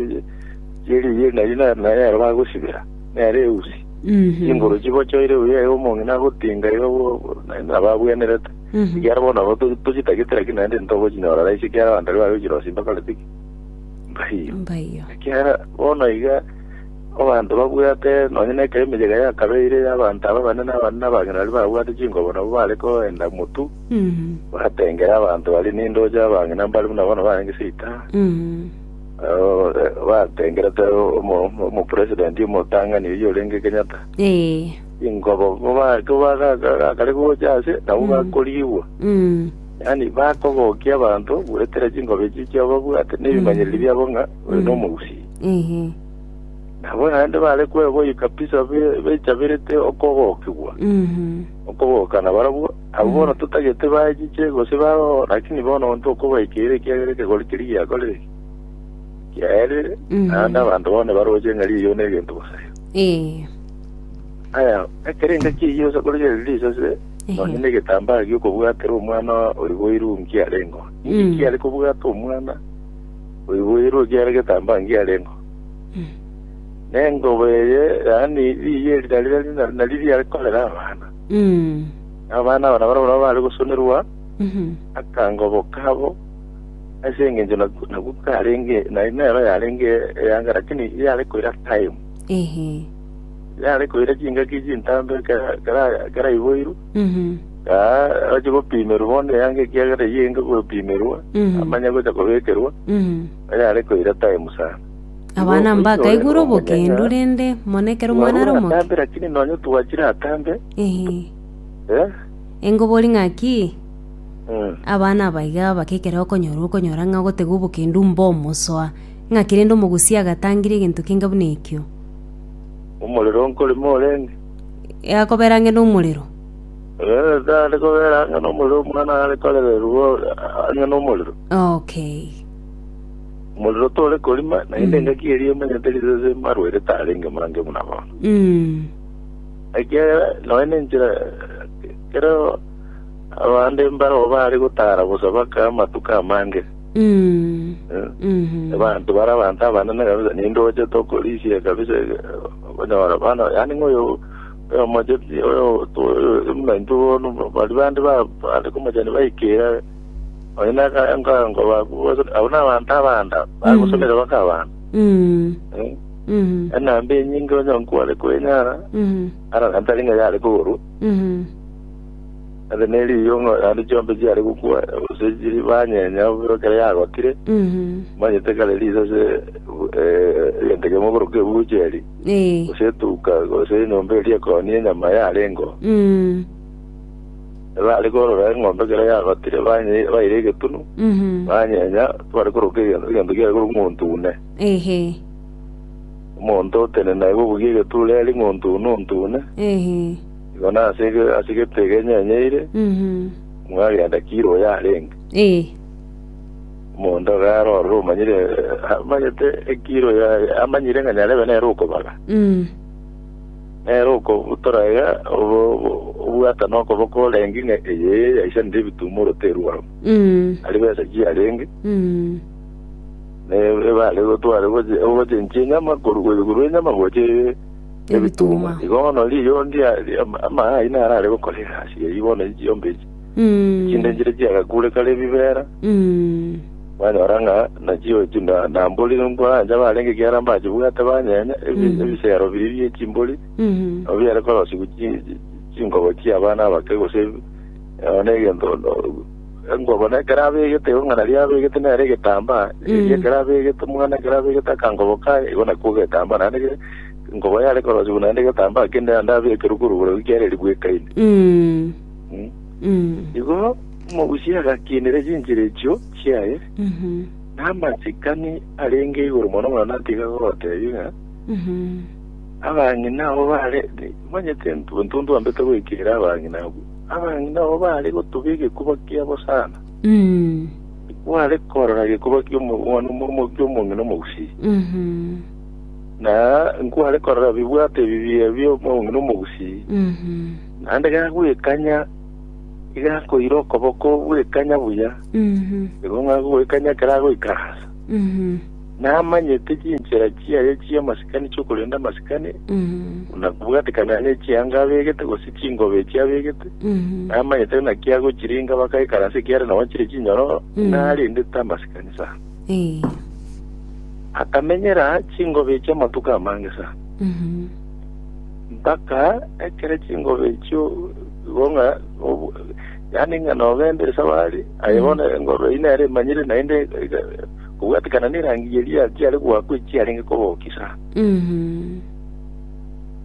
Eri ye nayo na- nayero bagosibera, nero eusi. Mhm. Chinguru chibochoire buya iga omong'ina agotinga iga bo- bo- na- nababwenerete. Mhm. Ekiagera bono nabo to- tochitagete lakini naende ntogochinyora raiche ekiagera abanto aria bagochirosia mbakoreti ki? Mbaiyo. Mbaiyo. Ekiagera bono iga abanto babwate nonye na ekero emechega yakabeire abanto aba abanene abanene abang'ina baria babwate chingobo nabo bare koenda motu Mhm. batengere abanto baria nindoche abang'ina mbare buna bono barenge seita. Mhm. Ore batengerete omo- omo- omopresidenti omotang'ani oyio orenge Kenyatta Ee. ingobo kobagakare gocha ase nabo Mm. bakorigwa Mm. yaani bakogokia abanto goetera chingobo echi chiababwate nebimanyereri Mm. biabo ng'a oyo Mm. nomogusii Ehe. nabo naende bare kweboyia kabisa be- bechaberete okogokigwa Mhm. okogokana barabwo Abwo bono totagete baechiche gose bagogo, lakini bono onto okobaikeire ekiagera ekegori keria giakorire ki? Giaerire, Mhm. naende abanto bono nibaroche ng'a riiyo negento bosayo. Ee. Aya, ekerenga ki'eyio ase korigera riri risase, Ehe. nonya negetambaa gi'okobwatera omwana oiboirwe nki arengo. Inki Mm. kiare kobwata omwana oiboirwe ekiagera egetambaa nki arengo? Mm. Nengoba eye, yaani riiyo eri nari- nari- nari- nari riare korera abana. Na abana aba nabana barabwo baare gosonerwa akangobo kabo, ase engencho naku- nakwo karenge na- nero yarenge eyanga, lakini yare koira time yare koira chingaki chintambe kera- kera- keraiboirwe aa ache gopimerwa bono eyanga ekiagera eyio enge gopimerwa amanye gocha kobekerwa yare koira time sana Abana mbakaigure obokendu, rende mono ekero omwana are omoke. Atambe lakini nonye twachire atambe. Eh. Engobori ng'aki abana abaiga abake ekero okonyora okonyora ng'a ogotega obokendu mbo omosoa. Ng'aki rende omogusia agatangire egento kenge buna ekio. Omorero nkorema orenge. Akobera ang'e nomorero. Eh, tare kobera ang'e nomorero omwana are korererwa ang'e nomorero. Okay. Omorero tore korima, naende engaki eria emanyete risese marwaire tarenge mange buna bono. Mm. Ekiagera noe nenchera kero abande mbaro baare gotara bosa baka amatuko amange. Mm. Eh, Mhm. Abantu bara abantu abanene kabisa ninde ochete okorisia kabisa eh, okonyora bana yani ngoyo oyo mocheti oyo to- oyo muna intwe bono bari bande ba bande komachani baikera Oyo nakaye nka- nkobaku gose abwo nabanto abanda bagosomire baka abana. Mm. Eh, Mhm. Enamba enyinge onye nkware kwenyara, Mhm. ara nabo tari ng'a yare kogorwa, Mhm. ase neriyo ng'a naende chiombe chiare gokwa, gose chiri banyenya obiro ekero yagotire, Mhm. manyete kare riise ase eh, egento kemo okoroka ebucheri, Eh. gose etuka, gose enyomba eria ekonia enyama yarengeo. Mm. Ebare korora eng'ombe ekero yagotire banye- baire egetunu, Mhm. banyenya, tibare koroka egento, egento kiare korwa ng'ontune. Ehe. Omonto otenene aigwe obugia egeturo eri ng'ontune ontune, Ehe. igo nase ege- ase egete egenyenyeire, Mhm. mwagenda kiro oyo arenge. Eh. Omonto agare orore omanyire, eh, amanyete ekiro ya- amanyire ng'a nyarebe nere okobaga. Mm. Nere okobutora iga obwata nokoboko orenge ng'a eye yaisanire ebitumo oroteru barabwo. Mm. Ari besa chiarenge, Mm. ne ebare gotware goche- ogochenchia enyama koru- korwa enyama gocha e- Ebituma. ebituma. Igo bono riiyo ndia ri- ama- amaya ayio naro are gokora egasi eyio bono chiombe echi. Mm. Chinde nchire chiagakure kare ebibera, Mm. Banyora ng'a nachi'oichi na mbori nkorancha barenge ekiagera mbachibwate banyenya ebisegero biria bie chimbori, nabo biare korosigwa chinkobo chi'abana abake gose one egento enkobo na ekero abegete igo ng'a nario abegete nere egetambaa, erio ekero abegete omwana ekero abegete akankobo kaye igo nakwo egetambaa naende enkobo yare korosigwa naende egetambaa kende naende abekerwe korwa igoro ekiagera erigwekaine. Igo omogusi agakiinera chinchera echio chiaye, na amasikani arenge igoro mono mono natiga goteebia ng'a, Abang'ina abo baare, omanyete ntonto ntwambete goikera abang'ina abwo, abang'ina abo baare gotuga egekuba kiabo sana, tikware korora gekuba ki'omwana ki'omong'ina omogusi, na nkware korora bibwato ebi bia bi'omong'ina omogusi. Naende gagwekanya, igakoira okoboko gwekanya buya, nigo ng'a gogoikanya ekero agoikaransa. Namanyete chinchera chiaye chi'amasikani chi'okorenda amasikani, buna bwatikana n'echianga abegete, gose chingoba echi abegete, namanyete naki agochiringa bakaikaransa ekiagera nao chire chinyororo, narendete amasikani sana. Akamenyera chingoba echi amatuko amange sana. Mpaka ekero chingobe echio igwo ng'a obu- yaani ng'a nogenda ase abare aye Mm. bono engoro eyio nere emanyire naende ega- kobwatekana nerangi eria chiare goakwa echi chiarenge kobokisa Mhm.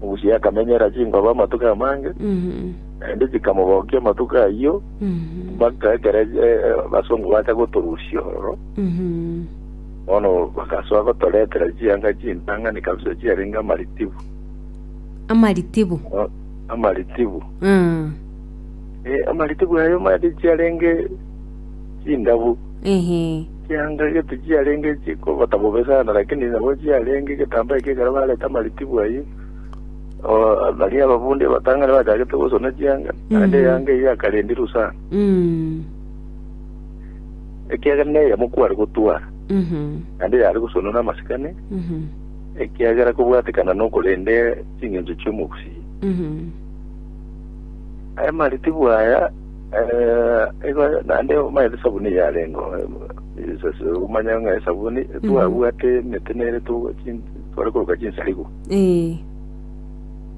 obusie akamenyera chingobe amatuko amange Mhm. naende chikamobokia amatuko ayio Mhm. mpaka ekero eh, eh, abasongo bacha gotorusia ororo Mhm. Bono bagasoa gotoretera chianga chintang'ani kabisa chiarenge amaritibu. Amaritibu. O- Amaritibu. Mm. Eh, amaritibu ayo mande chiarenge chindabu. Ehe. Chianga gete chiarenge chikogota bobe sana, lakini nabo chiarenge getamba eke ekero bareta amaritibu ayio. O, baria ababundi abatang'ani bachagete gosona chianga, naende Mhm. eyanga eyio yakarendirwe sana. Mm. ekiagera neyemo kware gotwara, naende yare gosonwa namasikani, ekiagera kobwatekana nokorende ching'encho chi'omogusii. Aye mariti bwaya eh, igo naende omaete sabuni yarengo isase omanya ng'a esabuni twabwate emete nere tu- chin- tware koroka chinsarigo Ee.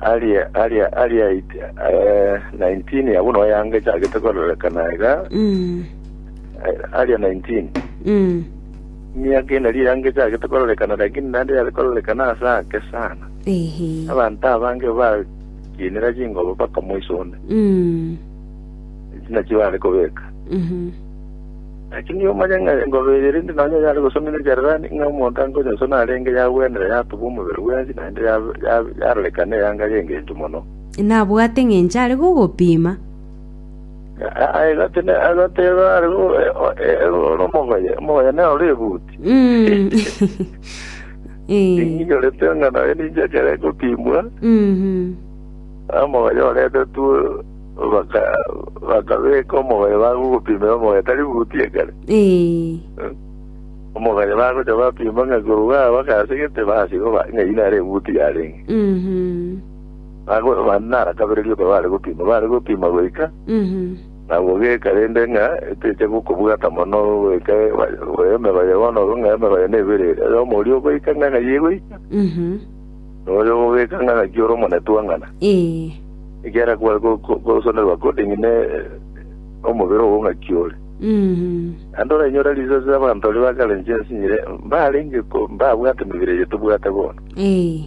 aria aria aria it- eh, 19 ya buna oyanga echagete kororekana iga Mm. eh, aria 19 Mm. miaka ina ria yanga echagete kororekana lakini nande yare kororekana ase ake sana Ehe. abanto abange bakinera chingobo bakamoisonda Mm. china chibare kobeka Mhm. Naki nigo omanye ng'a engobe eye rinde nonya yare gosomigwa ekererani, ng'a omonto ankonyonsona arenge yagwenire yatubwa omobere bwensi, naende yaroreka neyanga y'engencho mono. Nabwate engencho are gogopima. Agateba are ore omogoye, omogoye nere ore ebuti. Ninyorete ng'a nonya ninche ekero egopimwa, omogoye oretetwe. Bakabeeka omogaye bagogopimera omogaye tari buti ekare. Omogaye bagocha bapima ng'a igoro bwao bakasegete, basiba ng'a eyi nere ebuti yarenge. Mambia nara kabere rioka bare gopima, bare gopima goika nabwo geka rende ng'a eteche gokobwata mono goika emebaye bono ororo ng'a emebaye nebere ere omorio ogoika ng'a ng'ai egoika. Noyo ogobeka ng'a gaki ore omonetwa ng'ana, Ee. ekiagera kware go- go- gosonerwa according ne omobere obo ng'aki ore. Mm. Naende orainyore riso ase abanto baria bakarenche ensinyire, mbarenge ko- mbabwate emebere eye tobwate bono. Ee.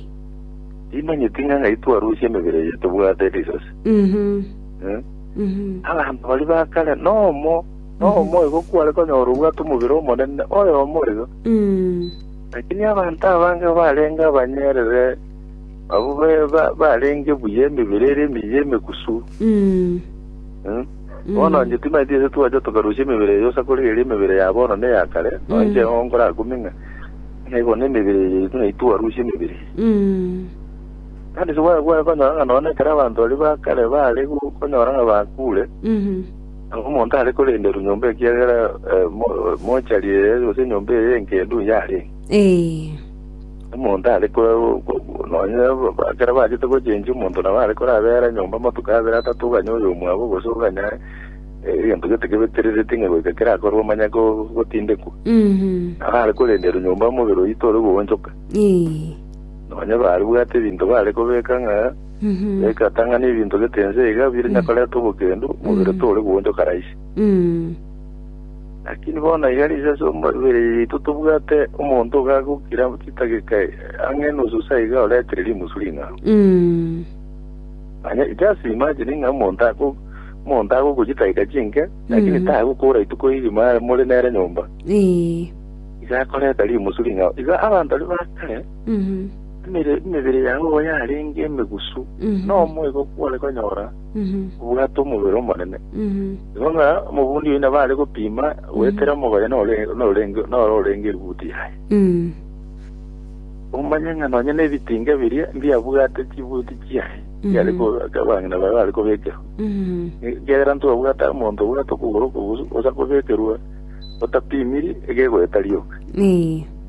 Timanyeti ng'a ng'ai twarusia emebere eye tobwate riso ase. Mhm. Eh? Mhm. Abanto baria ba kare nomo, nomo igo kware konyora obwate omobere omonene, oyomo iga. Mm. Lakini abanto abange barenge abanyeerere, abwo barenge buya emebere ere emiya emegusu. Bono inche timaeti ase twacha tokarusia emebere eye usa korigereria emebere ya bono na eya kare, nonya inche nigo nkorakumie ng'a nigo nemebere eye yaito nai twarusia emebere eye. Bono ase gwakonyora ng'a nonya ekero abanto baria ba kare bare gokonyora ng'a bakure, Nabo omonto are korenderwa nyomba ekiagera eh, mo- mochari eye gose enyomba eye engendu yarenge. Ee. Omonto are ko- ko- nonye ba- ekero bachete gochenchia omonto nabo are korabera nyomba amatuko abere atato oganye oyo omwabo gose oganye eh, egento gete kebeterereti ng'a goika kerakorwa omanye go- gotindekwa Mhm. nabo are korenderwa nyomba omobere oyio tore goonchoka Ee. nonye baribwate ebinto bare kobeka ng'a egatang'ana ebinto gete ense iga bire onya koreta obokendu, omobere tore goonchoka raisi. Lakini bono iga riise ase omobere yaito tobwate omonto iga agokira chidageka ang'e enusu sa iga oretire rimusu ring'ao. Manya just imagine ng'a omonto ago omonto agokwa chidageka chinke, lakini tagokora rituko erimo are more nere nyomba, iga akoreta rimusu ring'ao. Iga abanto aria ba kare Emebere yabo yarenge emegusu, na omoika okwo gware konyora obwate omobere omonene. Igo ng'a omobundi oino nabo are gopima goetera omogoye noro orenge eributi yaye. Omanye ng'a nonya nebitinga biria mbiabwate chibuti chiaye chiare abang'ina baye bare kobekerwa. Ekiagera ntibwabwate omonto obwate okogoro okogusu osa kobekerwa otapimiri egegoeta rioka.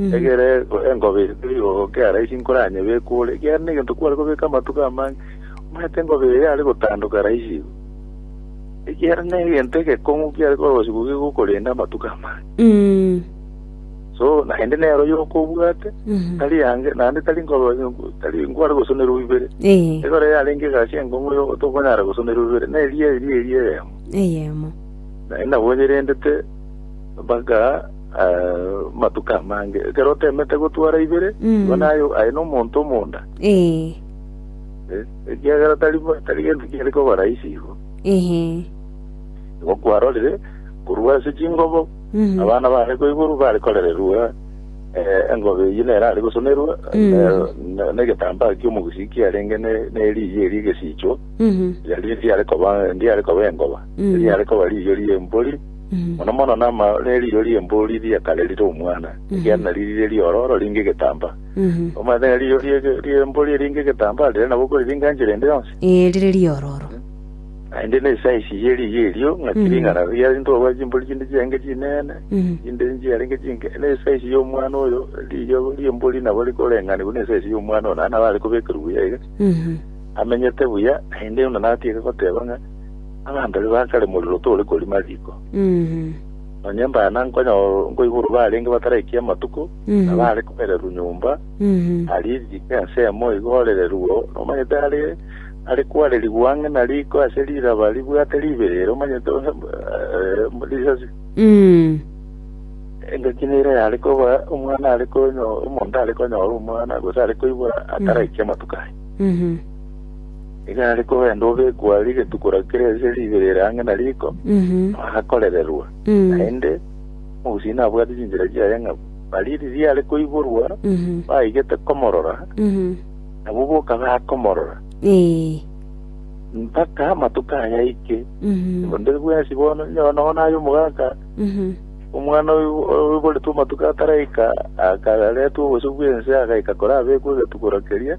Egere engobe eye yogoka eara ase inkoranya ebekwe ore, ekiagera negento kware kobeka amatuko amange, omanyete engobe eye yare gotandoka raisi igo. Ekiagera negento egekong'u kiare korosiwa gegokorenda amatuko amange. Mm. So naende nero yoka obwate, Mhm. tari yange, naende tari nkoba, tari nkware gosonerwa ibere. Eh. Egere eye yarenge egasi enkong'u yo tokonyara gosonerwa ibere, na eria eria eria eyemo. Eyemo. Naende nabo nyerendete mpaka Amatuko amange, ekero oteemete gotwara ibere, igo naye aye nomonto omonda, Ee. eh, ekiagera tari tari gento kiare koba rahisi igo. Ehe. Igo kwarorire korwa ase chingobo Mhm. abana bare koiborwa bare korererwa eh, engobe eyio nere are gosonerwa Mm. ne- ne- negetambaa ki'omogusii kiarenge ne- neriiyi eria egesiichwa Mhm. riari riare koba ndiare koba engoba Mm. riare koba riiyo ri'embori mono mono nama- neriiro ri'embori riria kare rire omwana, ekiagera nario rire riororo ringe egetambaa. Omanyete ng'a riiro rie- ri'embori ringe egetambaa, riria nabo okoriringa enchera ende yonsi, Ee, rire riororo. naende nesize ye riiro erio, ng'a tiring'ana riare ntobwate chimbori chinde chiarenge chinene, Mhm. chinde nchiarenge chinke, nesize y'omwana oyo, riiro ri'embori nabo rikoreng'anigwa nesize y'omwana oyo, naende nabo arekobekerwa buya iga, Mhm. amenyete buya, naende buna natiga goteba ng'a. Abanto ase bakare morero tore korima riko. Nonya embana nkonyo- nkoiborwa barenge bataraiki amatuko, na bare koererwa nyomba, aria eriko ensemo igo orererwe, nomanyete are are kwarerigwa ang'e na riko ase riraba ribwate ribeere, omanyete onde eh, risasi. Engaki nere yare koba omwana are konyo- omonto are konyora omwana, gose are koibora ataraiki amatuko aye. Nigo are kogenda obekwa aria getuko na kera ase ribe rere ang'e na riko, agakorererwa. Naende omogusii nabwate chinchera chiaye ng'abo. Baria riria are koiborwa baigete komorora, nabwo boka bakomorora, mpaka amatuko aye aike. Onde bwensi bono, onye nonya naye omogaka, omwana oiboretwe amatuko ataraika, akaretwa obosio bw'ense agaika korabekwa egetuko na keria,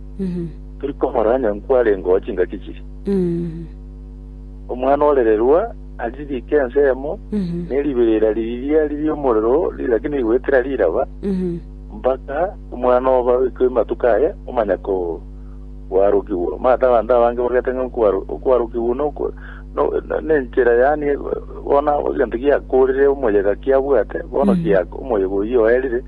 Torikomorora onye nkwarengeo chingaki chiria. Omwana orererwa aririke ensemo, ne riberera riria riri omorero riria gaki nirigoetera riraba, mpaka omwana oba oikwe amatuko aye omanya koarokigwa. Omanyete abanto abange bagete ng'a okoaro- okoarokigwa noko- no- no- nenchera yaani bono egento giakorire omoyega kiabwate, bono giak- omoyega oyio oerire,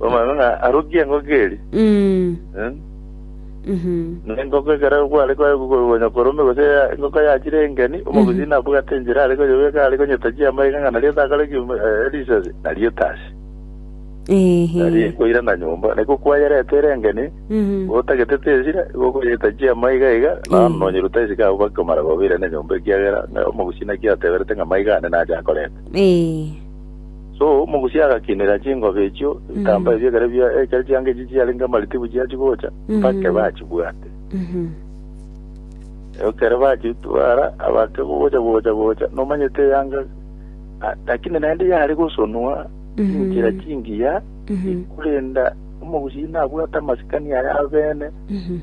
Omanyete ng'a arokie engoko eria, Mm. eh, Mhm. na engoko ekero kware kwaye kogonya korome gose ya- engoko yachire engeni, omobisi nabwate enchera are koyebeka are konyetachia amaiga ng'a nario takore ki- eh, risasi, nario etasi. Nario Ehe. ekoira na nyomba, naiko kwayerete ere engeni, Mhm. otagete tesira, gokoyetachia amaiga iga, nao Mm. nonyeruta esike abwo bakomara kobeira na enyomba ekiagera ng'a omobisi naki ateberete ng'a amaiga ane nache akorete. Eh. So omogusia agakinera chingobe echio ebitambaa ebio ekero bia- ekero chianga echio chiarenge amaritibu chiachia gocha, mpaka Mhm. bachibwate. Mhm. Ekero bachitwara abake gocha gocha gocha, nomanyete eyanga ah, lakini naende yare gosonwa Mhm. chinchera chingiya, Mhm. korenda omogusia nabwate amasikani aye abene, Mhm.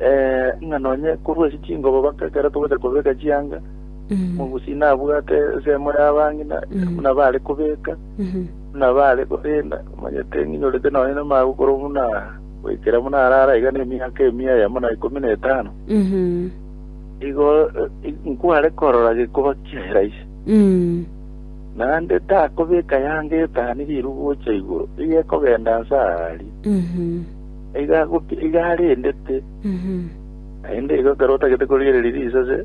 eh, ng'a nonye korwa ase chingobo mpaka ekero togocha kobeka chianga, Omogusi nabwate ensemo y'abang'ina buna bare kobeka, buna bare korenda, omanyete ng'inyorete nonye namagokoro buna goikera buna arara iga nemiaka emia eyemo na ikomi na etano. Igo eh, nkware korora gekoba kiaera ise. Naende takobeka yange etani riru gocha igoro, iga ekogenda nse aaria. Iga agopi- iga arendete, naende igo ekero otagete korigereria risase,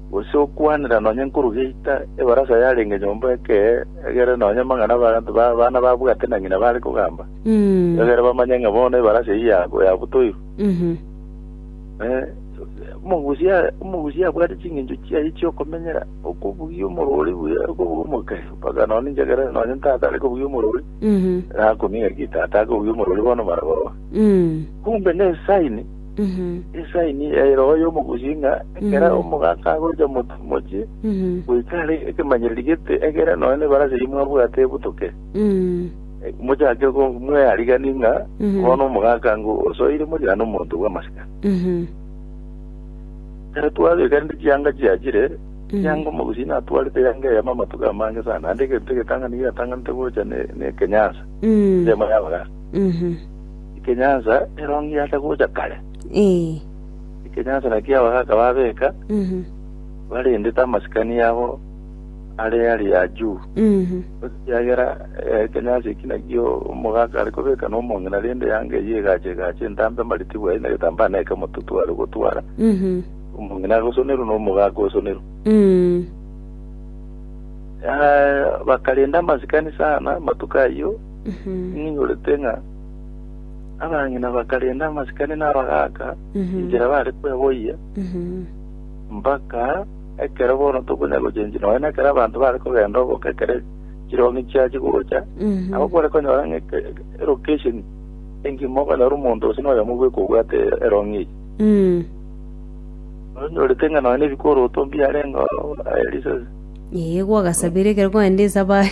gose okwanera nonya nkoru geita ebarasa yarenge nyomba ekee, egere nonya amang'ana abanto ba abana babwate na ng'ina bare kogamba, egere bamanye ng'a bono ebarasa eyio ya- yabutoirwe. Eh, omogusia, omogusia abwate ching'encho chiaye chi'okomenyera, okobugia omorwori buya, okobugia omokei, mpaka nonya ninche ekero nonya tata are kobugia omorwori, nakumia ng'a ki tata akobugia omorwori bono mara bobe. Kumbe nesaini. Esaini ya eroho y'omogusi ng'a ekero omogaka agocha moto- mochie goika are ekemanyererio gete, egere nonya nebarasi eyio mwabwate ebutoke, Eh, mochake go- mweariganie ng'a bono omogaka ng'o osoire moriane omonto bw'amasika. Ekero twabeka rende chianga chiachire, chianga omogusi natwarete yanga eyemo amatuko amange sana, naende egento egetang'ani giatanganete gocha ne- nekenyansa, ensemo y'abagaka. Ekenyansa ero ngiacha gocha kare. Ee. Ekenyansa nakio abagaaka babeka Mhm. barendete amasikani yabo are aria juu. Mhm. Ekiagera eh, ekenyansa eki nakio omogaaka are kobeka nomong'ina, rende eanga eyio egacha egacha entambe amaritigwe aye na egetambaa na ekemotutu are gotwara. Mhm. Omong'ina agosonerwa na omogaaka osonerwa. Mm. Eh, bakarenda amasikani sana amatuko ayio Mhm. ng'inyorete ng'a Abang'ina bakarenda amasikani na abagaaka Mhm. inchera bare kweboyia, Mhm. mpaka ekero bono tokonya gochenchia nonya na ekero abanto bare kogenda oboke ekero chirongi chiachia gocha, Mhm. nabo kware konyora ng'a eke- elocation engima okonyora omonto gose noyomo obe kobwate erongi eye. Mm. Onyorete ng'a nonya na ebikoroto mbiarenge oo, aye risasi. Ee, gwagasabire ekero kwagenda esabari.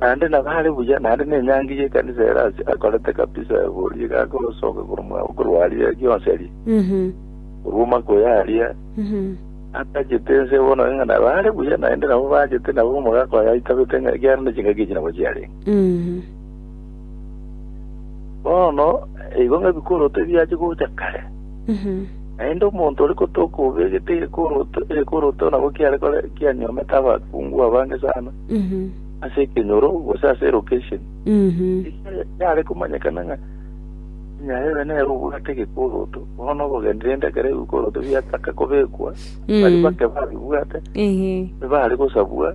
naende nabo are buya naende nenyangi yekanisa ere ase akorete kabisa egori iga akosoka korwa korwa aria gionsi aria Mhm. korwa omaka oyo aria Mhm. atagete ense bono ng'a nabo are buya naende nabo bagete nabo omogaka oyo aitabete ng'a ekiagera ne chingaki echi nabo chiarenge Mhm. Bono eigo ng'a ebikoroto ebiachia gocha kare, naende omonto ore gotoka obegete egekoroto, egekoroto nabo kiare kore kianyuomete abakungu abange sana ase ekenyoro gose ase elocation. Ekere yare komanyekana ng'a nyare ebe nere obwate egekoroto, bono obogende rende ekero ebikoroto biataka kobekwa, baria bake babibwate, ebare gosabwa,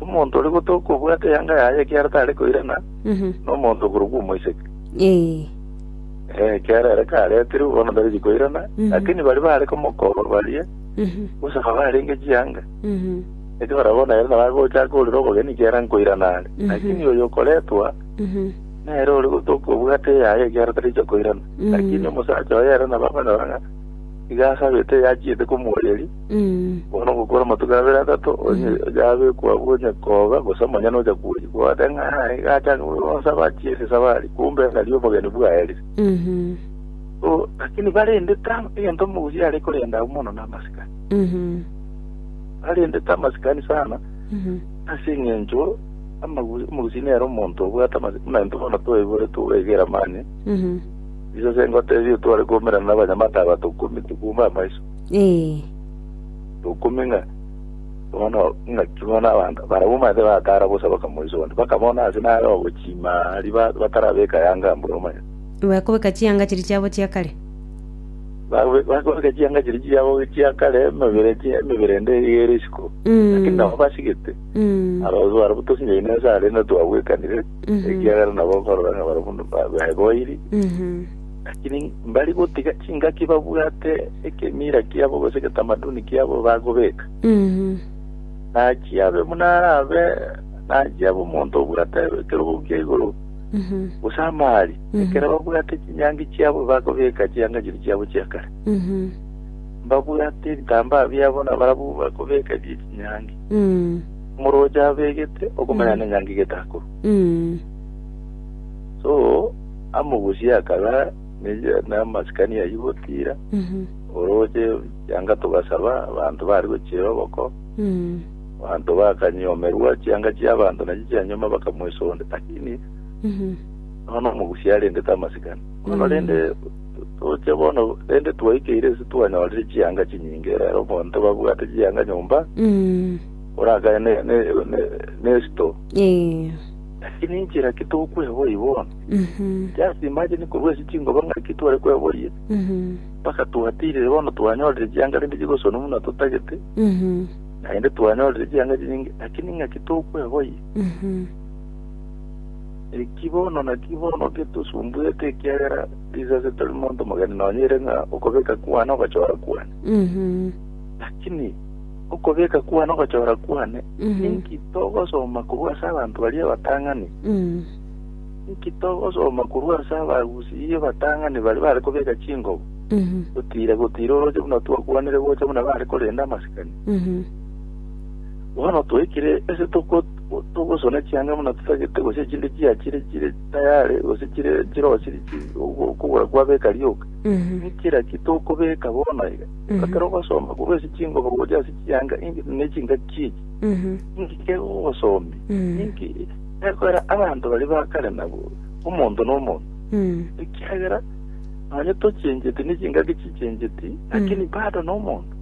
Omonto oria gotoka obwate eyanga yaye ekiagera tare koirana nomonto okorokwa omoiseke. Ekiagera ere karetirwe, bono tarigi koirana, lakini baria bare komokorwa baria, gose babarenge chianga, eke barabwo nere nabo agochaka korera obogeni ekiagera nkoirana are. Lakini oyo okoretwa, nere ore gotoka obwate eyaye ekiagera taricha koirana. Lakini omosacha oye ere nabo amanyorore ng'a. Iga asabete yachiete komoeria, Mm. bono ogokora amatuko abere atato, onye onya abekwa abwo onye koga, gose amanyene ocha kwoyi. Gwacha ng'a "Ah, iga achange buna bonsi abachia ase esabari, kumbe ng'ari obogeni bwaerire. Mhm. So, lakini barende tang' egento omogusi are korenda abwo mono namasikani. Mhm. Barende tamasikani sana, Mhm. ase eng'encho amagu- omogusi nere omonto obwate amasi- buna intwe bono twaibore toegera mani, Mhm. Iso ase ngoteebie ere tware koumerana nabanyamate aba tokumi tokouma amaiso. Ee. Tokumi ng'a bono ng'aki bono abanto barabwo omanyete bakara bosa bakamoisa onde bakabona ase nare ogochima aria ba- batarabeka yanga mbura omanyete. Bakobeka chianga chiria chiabo chia kare. Babe- bakobeka chianga chiria chiabo chia kare emebere chi- emebere ende eyio ere isiko. Lakini Mm. nabo basigete. Mm. Ababisa barabwo tosinyaine ase arenda twabwekanire. ekiagera nabo nkororeka barabwo ba- beboiri Mhm. lakini mbari gotiga chingaki babwate ekemira kiabo gose eketamaduni kiabo bagobeka Mhm. nachiabe buna arabe nachiabe omonto obwate ekerogo kia igoro Mhm. gose amari Mhm. ekero babwate chinyangi chiabo bagobeka chianga chiri chiabo chia kare Mhm. babwate ebitambaa biabo nabarabwo bakobeka bie chinyangi omoroche abegete okomanya ne nyangi getakuru so amogusie akaba ne- namasikani ayio gotira oroche yanga togasaba abanto bari gochira oboko abanto bakanyomerwa chianga chia abanto nachi chianyoma bakamwesonde lakini nono omogusi arendete amasikani bono rende Toche bono, rende twaikeire ase twanyorire chianga chinyinge, rero omonto babwate chianga nyomba Mm. orakane ne- ne- ne- nesto. Eh. Lakini inchera ki tokweboyia bono? Mhm. Just imagine korwa ase chingoba ng'aki tware kweboyia Mhm. mpaka twatirire bono twanyorire chianga rende chigosonwa buna totagete Mhm. naende twanyorire chianga chinyinge lakini ng'aki tokweboyia Mhm. eki bono naki bono getosumbuete ekiagera Sisi ase tori monto omogeni nonya ere ng'a okobeka kwane ogochora kwane. Mhm. Lakini okobeka kwane ogochora kwane, Mhm. inki togosoma korwa ase abanto baria abatang'ani? Mm. Inki togosoma korwa ase abagusii abatang'ani baria bare kobeka chingobo? Mhm. Gotira gotira oroche buna twakwanire gocha buna bare korenda amasikani. Mhm. Bono twaikire ase togo- togosona chianga buna totagete gose chinde chiachire chire tayare, gose chire chirosiri chi ogo- okogora kwabeka rioka, niki raki tokobeka bono iga? Ekero ogosomba korwa ase chingoba gocha ase chianga inki ne chingaki echi, inki kegogosomia? Inki ekorera abanto baria ba kare nabo omonto na omonto? Ekiagera nonye tochenjeti ne chingaki chichenjeti, lakini bado nomonto.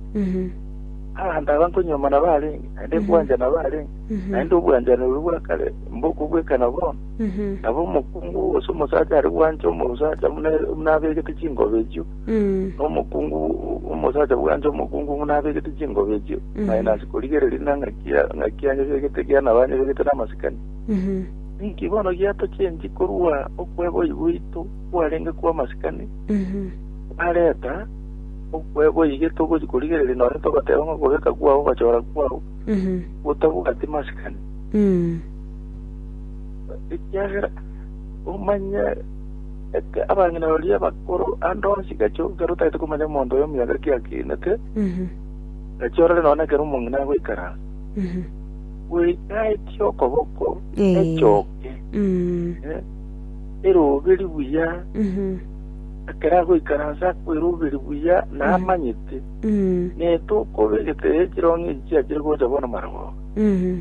Abanto aba nkonyuomana barenge, naende nkwanchana barenge, naende obwanchani oria bwa kare mbokobwekana bono. Nabo omokungu gose omosacha are bwancha omosacha buna ere- buna abegete chingoba echio, Mm. na omokungu omosacha bwancha omokungu buna abegete chingoba echio, Mhm. naye nase korigereria na ng'aki ya- ng'aki yanyebegete ekiagera nabo anyebegete namasikani. Mhm. Ninki bono giatochenchi korwa okweboyi gwaito kwarenge kw'amasikani Mhm. kwareta okweboyi getogochi korigereria nonya togoteba ng'a okobeka kwao ogochora kwao Mhm. gotabwati masikani. Mm. ekiagera omanye eke abang'ina baria bakoro ande onsi gacho ekero otagete komanya omonto oyo emiaka ki akinete Mhm. gachi orore nonye ekero omong'ina agoikara Mhm. goika etie okoboko Eh. echoke Mm. eh, eroberi buya Mhm. ekero agoikaransa akweroberi buya na Mhm. amanyete Mm. netokoba egetebe ekirong'e echiakire gocha bono marogoba Mhm.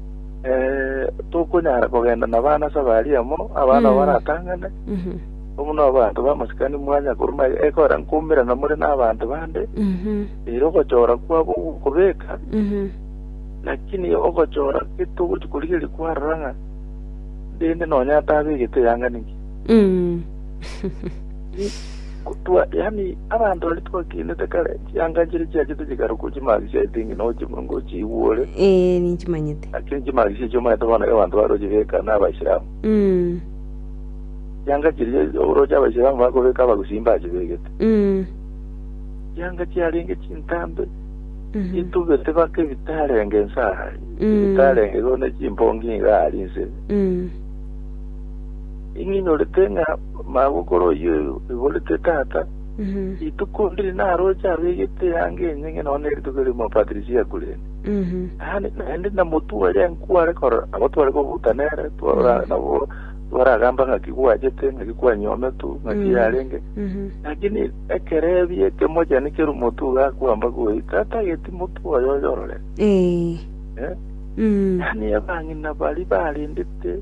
Eh, tokonyara kogenda na bana ase abari amo abana Mm. baratang'ane Mhm. omuna abantu bamasikani mwanya koruma ekora nkumirana more n'abantu bande Mhm. rero ogochora kwabo gokobeka Mhm. lakini ogochora getogochi korigeria kwarora ng'a rende nonya atabegete yang'anigi Mm. Kotwa, yaani abanto baria twakenete kare, chianga nchiria chiachete chikarokwa chimaagiso ase eng'ina oche Omonene ngochiigwore, Ee, ninchimanyete. naki chimaagiso echio omanyete bono ekero abanto bare gochibeka na Abaisilamu. Mm. Chianga chiria oroche Abaisilamu bakobeka Abagusii mbachibegete. Mm. Chianga chiarenge chintambe, Mhm. chitubete baka ebitarenge inse aa, Mm. ebitarenge igo ne chimpongi iga aria inse. Mm. Ing'inyorete ng'a Omogokoro oyio oiborete tata, rituko ndiri naroche abegete eanga enyinge nonya ne rituko erimo Patrisia Kuleni. Yaani naende na motware nkware koro abo tware kobuta nere twara nabo twaragamba ng'aki gwachete ng'aki kwanyometu ng'aki yarenge lakini ekero ebi ekemochani keru motu gakwamba goi tata geti motu oyo oyorore Eh. yaani abang'ina bari barendete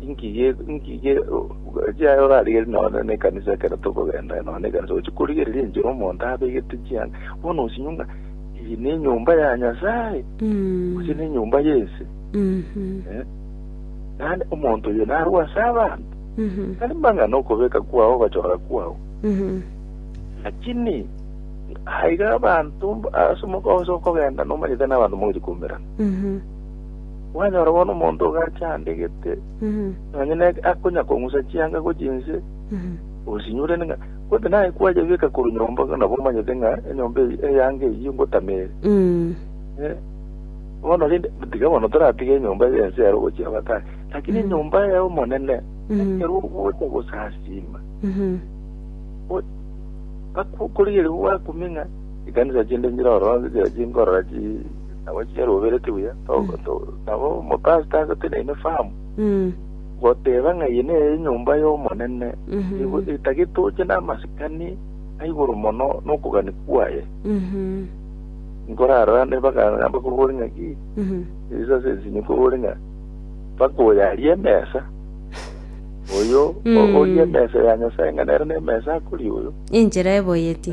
Inki ge, inki ge, chiaye orarigerie nonya na ekanisa ekero tokogenda nonya na ekanisa gochia korigereria enchera omonto abegete chianga bono osinywe ng'a iyi ne enyomba ya Nyasaye gose ne enyomba y'ense eh? naende omonto oyo narwe ase abanto tari mang'ana okobeka kwao ogochora kwao lakini aiga abanto ase omogooso okogenda nomanyete n'abanto mogochia koumerana Mwanyora bono omonto ogacha aande gete, nonya nere akonyakong'usa chianga gochia inse, osinyurene ng'a gose naye kwayebeka korwa nyomba nabo omanyete ng'a enyomba eye eyange eyio ngotama ere. Eh, bono rende tiga bono toratige enyomba y'ense ero gochia batari, lakini enyomba y'Omonene ekero ogocha gosasiima o- bakokorigereria gwakumia ng'a ekanisa chinde nchire ororo nchichire chinkorora chi nabo chinya robereti buya to- Mm. to- nabo omopasita ase tenaine famu Mm. goteba ng'a eye neye enyomba y'omonene Mhm. Igo- etagete oche namasikani aigoro mono nokogani kwaye Mhm. nkorarorane bagana bakobore ng'a ki Mhm. esa ase ensinyo kobore ng'a mpaka oyo arie emesa oyo o- Mm. orie emesa ya nyasaye ng'a nere nemesa akoria oyo Enchera eboyeti.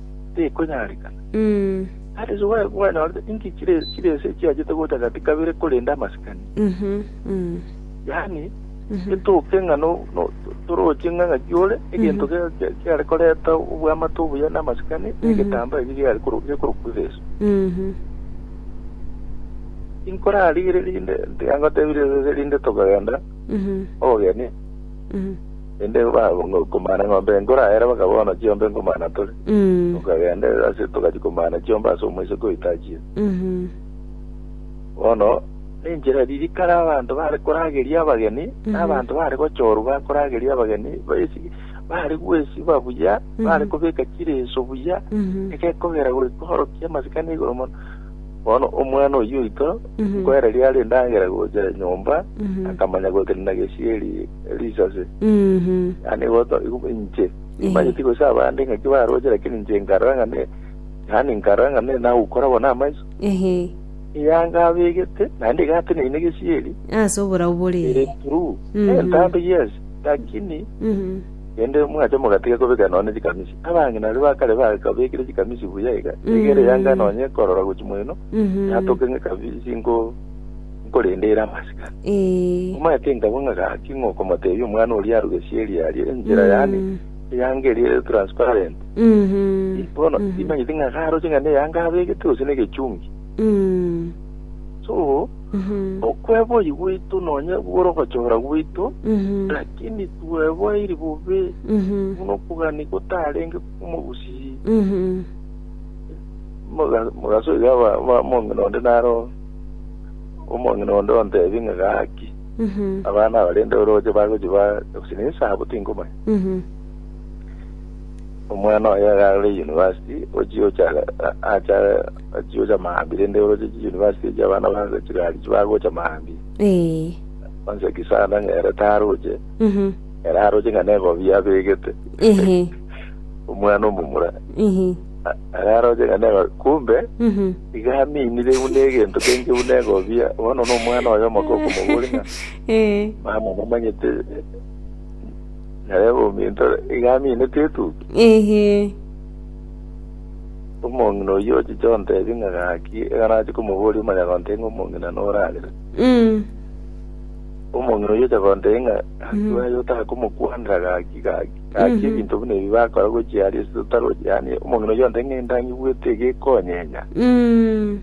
tekonyarekana. Nere iso gwe- gwenyorete inki chire chire ense echiachete gocha gati kabere korenda amasikani? Mhm. Mm. Yaani, Mhm. etoke ng'a no, no, to- toroche ng'a ng'aki ore, egento Mhm. kia- kia- kiare koreta obwamate obuya na amasikani, Mhm. negetambaa eki giare koro- gekorokwa Yesu. Mhm. Inkorarigere rinde, tiga ngotebire rinde tokogenda Mhm. obogeni, Mhm. Naende bakomana eng'ombe enkora ere bakaba bono chiombe nkomana tore. Mm. Tokagenda ase togachia komana chiombe ase omoiseke oitachire. Mhm. Bono nenchera ririka rabanto bare korageria abageni, Mhm. nabanto bare gochorwa bakorageria abageni, baesi bare gwesiba buya, Mhm. bare kobeka chireso buya, Mhm. egekogera goika orokia amasikani igoro mono. Bono omwana oyio oito, Mhm. nkoereria are endagera gocha nyomba, Mhm. akamanya gotenena gesieri risase, yaani igoto igu inche nimanyeti gose abande ng'aki baroche lakini inche nkarora ng'a ne yaani nkarora ng'a ne nagokora bono amaiso ehe eyanga abegete naende igateneine gesieri ase oborau bore ere true Mhm. eh ntambe yes lakini Mhm. ende mwache mogatiga kobeka nonye chikamisi abang'ina aria bakare bakabekire chikamisi buya iga egere yanga nonye korora gochi moino Mhm. yatoke ng'e kabisi nko nkorendeire amasikani. Ee. Omanyete nkabua ng'a gaki ng'a okomotebia omwana oria arugesie eria aria enchera yane eyanga eria ere transparent. Mhm. Ii, Bono Mhm. timanyeti ng'a garoche ng'a neyanga abegete gose negechungi. Mm. So, Mhm. okweboi gwaito nonye bwore ogochora gwaito, Mhm. lakini tweboiri bobe Mhm. buna okogania gotarenge kw'omogusii. Mhm. Moga- mogaso iga ba- ba- mong'ina onde naro Omong'ina onde ontebie ng'a gaki, Mhm. abana abarende orooche bagochia ba gose ne esaabo tinkomanya. Mhm. Omwana oye agare university ochia ocha acha achia ocha maambi rende orooche chi university echi abana ba chigari chi bagocha maambi. Eh. Onsi ekisanda ng'a ere taroche, Mhm. ere aroche ng'a negobi abegete. Ehe. Omwana omomura Mhm. a- ere aroche ng'a nego kumbe Mhm. Iga aminire buna egento kenge buna egobia, bono nomwana oye omoke okomoboria ng'a, Ee. Mama namanyete narebe ominto ore. Iga aminete etugi. Eehee. Omong'ina oyio ochiche ontebie ng'a gaki, iga nache komoboria omonyagontee ng'a omong'ina nore arere. Mm. Omong'ina oyio ocha gontebia ng'a gaki Mm. baye otakomokwanera gaki gaki. Gaki ebinto buna ebi bakora gochia aria ase totaro, yaani omong'ina oyio onde ng'a endang'igwete iga ekonyenya. Mm.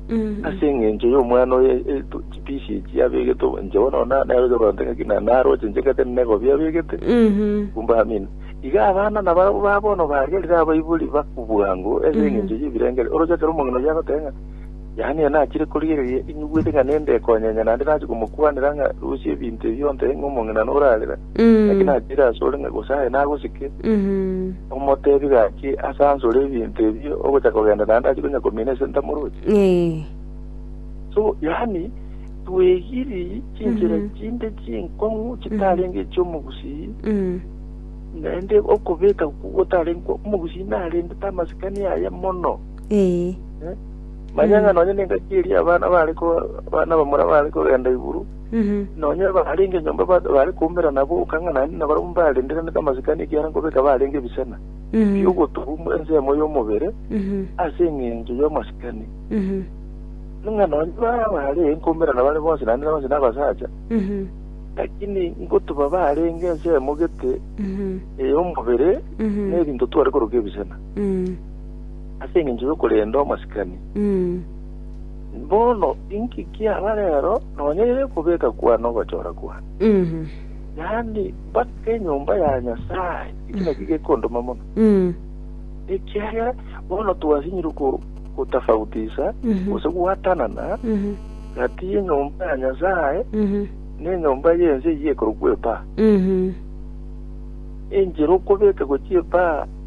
Mm. Ase eng'encho y'omwana oyo e- e- to- chipisi echi abegete obo- inche bono na- nero ocha koronte ng'aki na- naroche inche ngete nigo biabegete Mhm. kumbe amina iga abana nabarabwo ba bono baria riria abaibori bakubwango ase Mhm. eng'encho y'ebirengeri oroche ekero omong'ina oyio agoteba ng'a Yohana oyo nachire korigereria inyugwete ng'a nende ekonyenya naende nachia komokwanera ng'a, Rusia ebinto ebi ontebie ng'a omong'inano orarera, naki nachire asore ng'a gose aye nagosike. Omotebie gaki ase ansore ebinto ebi ogocha kogenda naende achie konya komina ase ntamoroche. So yaani twegiiri chinchera chinde chinkong'u chitarenge echi'omogusii naende okobeka okwo gotarenge kwa omogusii narendete amasikani aye mono. Ee. Manya ng'a nonya nengaki eria abana baare ko- abana bamura baare kogenda iguru, Mhm. nonya abarenge nyomba ba- baare koumera nabo okang'a naende nabarabwo mbarendereretie amasikani ekiagera nkobeka barenge ebisena Mhm. bi'ogotubu mu ensemo y'omobere Mhm. ase engencho y'amasikani. Mhm. Ng'a nonya baba baare nkoumera nabare bonsi naende bonsi nabasacha, Mhm. lakini nkotuba barenge ensemo gete Mhm. ey'omobere Mhm. n'ebinto tware koroka ebisena. Mhm. ase engencho y'okorenda omosikani. Bono inki kiaba rero nonya ere kobeka kwane ogochora kwane? Yaani, mbake enyomba ya Nyasae, ekio nakio gekondoma mono, ekiagera bono twasinyire gotafautisa gose gwatanana gati y'enyomba ya Nyasae na enyomba y'ense eyio ekorokwa epaa. Enchera okobeka gochia epaa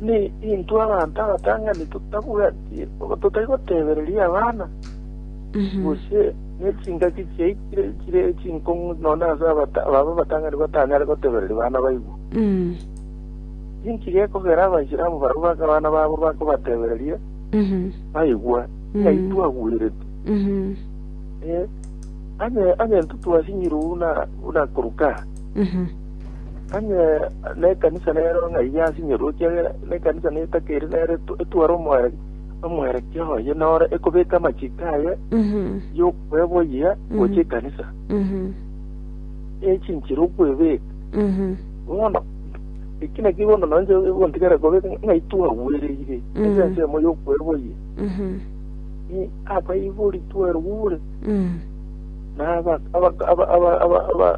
Inee! Intwe abanto abatang'ani totabwati obo totai gotebereria abana? Gose nechingaki chiaikire chire chinkong'u nonya ase abata- ababo abatang'ani batanyare gotebereria bana baigwe? Inki gekogera Abaisilamu barabwo bake abana babo bakobatebereria baigwe? Ng'ai twagwenerete? Ee, onye- onye intwe twasinyirwe buna buna koruka aa. Onye nekanisa nero ng'ai yasinyorwe, ekiagera nekanisa netakeri nere etware omware omwerekia oye nore ekobeka amachiko aye yokweboyia gocha ekanisa echinchire okwebeka bono eki naki bono nonche egontigera kobe ng'ai twagwereire ase ensemo yokweboyia abaibori twerugure na aba aba aba aba.